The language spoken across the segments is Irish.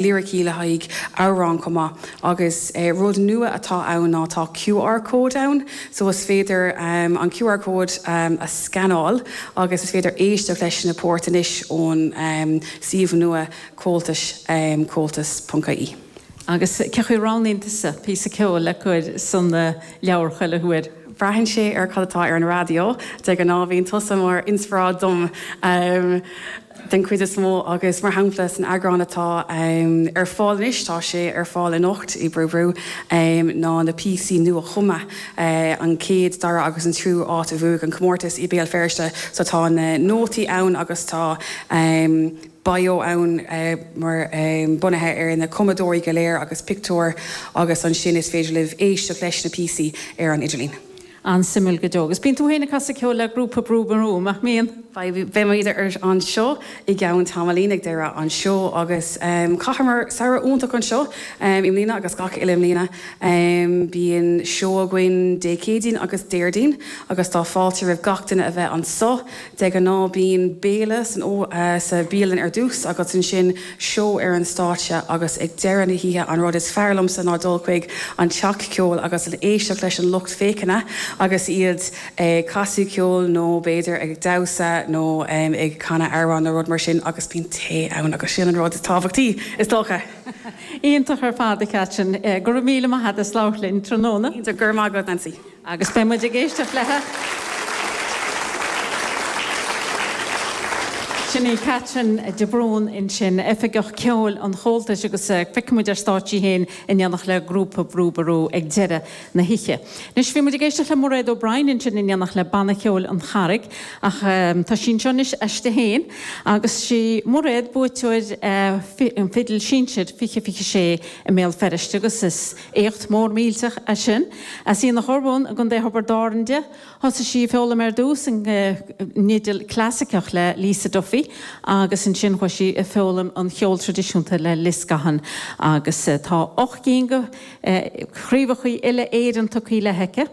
liricí le haghaidh amhrán chomh maith agus rud nua atá ann ná tá QR code ann so is féidir an QR code a scanáil agus is féidir éisteacht leis na poirt anois ón suíomh nua Comhaltais, comhaltas.ie. Agus cé chaoi a roghnaíonn tusa píosa ceoil le cur san leabhar chuile huair? Braitheann sé ar cad atá ar an raidió, de ghnáth bíonn tusa mar inspioráid dom. den chuid is mó, agus mar shampla san eagrán atá ar fáil anois, tá sé ar fáil anocht i mBrú Ború, ná na píosaí nua-chumtha, an chéad, dara agus an tríú áit a bhuaigh an comórtas i mBéal Feirste, so tá na nótaí ann agus tá bio ann mar bunaithe ar na cumadóirí go léir agus pictiúir agus ansin is féidir libh éisteacht leis na píosaí ar an idirlíon. An-suimiúil go deo. Agus bíonn tú féin ag casadh ceoil le grúpa Brú Ború, nach mbíonn? Beimid ar an stáitse i gceann tamaillín, ag deireadh an seó, agus chaitheamar samhradh iontach anseo i mbliana agus gach uile mbliana. Bíonn seó againn Dé Céadaoin agus Déardaoin agus tá fáilte roimh gach duine a bheith anseo. De ghnáth bíonn béile san sa bhialann ar dtús agus ansin, seó ar an stáitse agus ag deireadh na hoíche an rud is fearr liomsa ná dul chuig an teach ceoil agus éisteacht leis an lucht féachana agus iad ag casadh ceoil nó b'fhéidir ag damhsa nó ag canadh amhrán nó rud mar sin agus bíonn tae ann agus sin an rud is tábhachtaí, is dócha. Iontach ar fad, a Catherine. Go raibh míle maith agat as labhairt linn tráthnóna. Go raibh míle maith agat, Nancy. agus beidh muid ag éisteacht leat. Sin í Catherine de Brún ansin, Oifigeach Ceoil an Chomhaltais agus feicfidh muid ar stáitse í féin in éineacht le grúpa Brú Ború ag deireadh na hoíche. Anois bhí muid ag éisteacht le Mairéad O'Brien ansin in éineacht le Banna Ceoil an Charraig ach tá sí anseo anois aisti féin agus is í Mairéad buaiteoir an Fidil Sinsir 20 26 i mBéal Feirste agus is Éacht mór millteach é sin. As Aonach Urmhumhan i gContae Thiobraid Árann di. Thosaigh sí ag foghlaim ar dtús an fhidil chlasaiceach le Lisa Duffy agus ansin chuaigh sí ag foghlaim an cheoil traidisiúnta le Liz Gahan agus tá ocht gcinn de chraobhachaí uile-Éireann tugthaí léi aici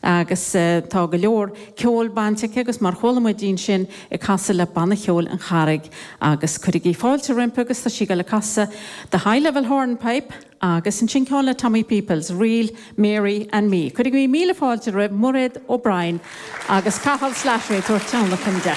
agus tá go leor ceoil bainte aici agus mar chuala muid í ansin ag casadh le Banna Cheoil an Charraig agus cuirigí fáilte roimpi agus tá sí ag dul ag casadh The High Level Hornpipe Agus ansin ceann le Tommy Peoples, ríl Mary and Me. Cuirigí míle fáilte roimh Mhairéad O'Brien agus Cathal Slattery ag tabhairt tionlacan di.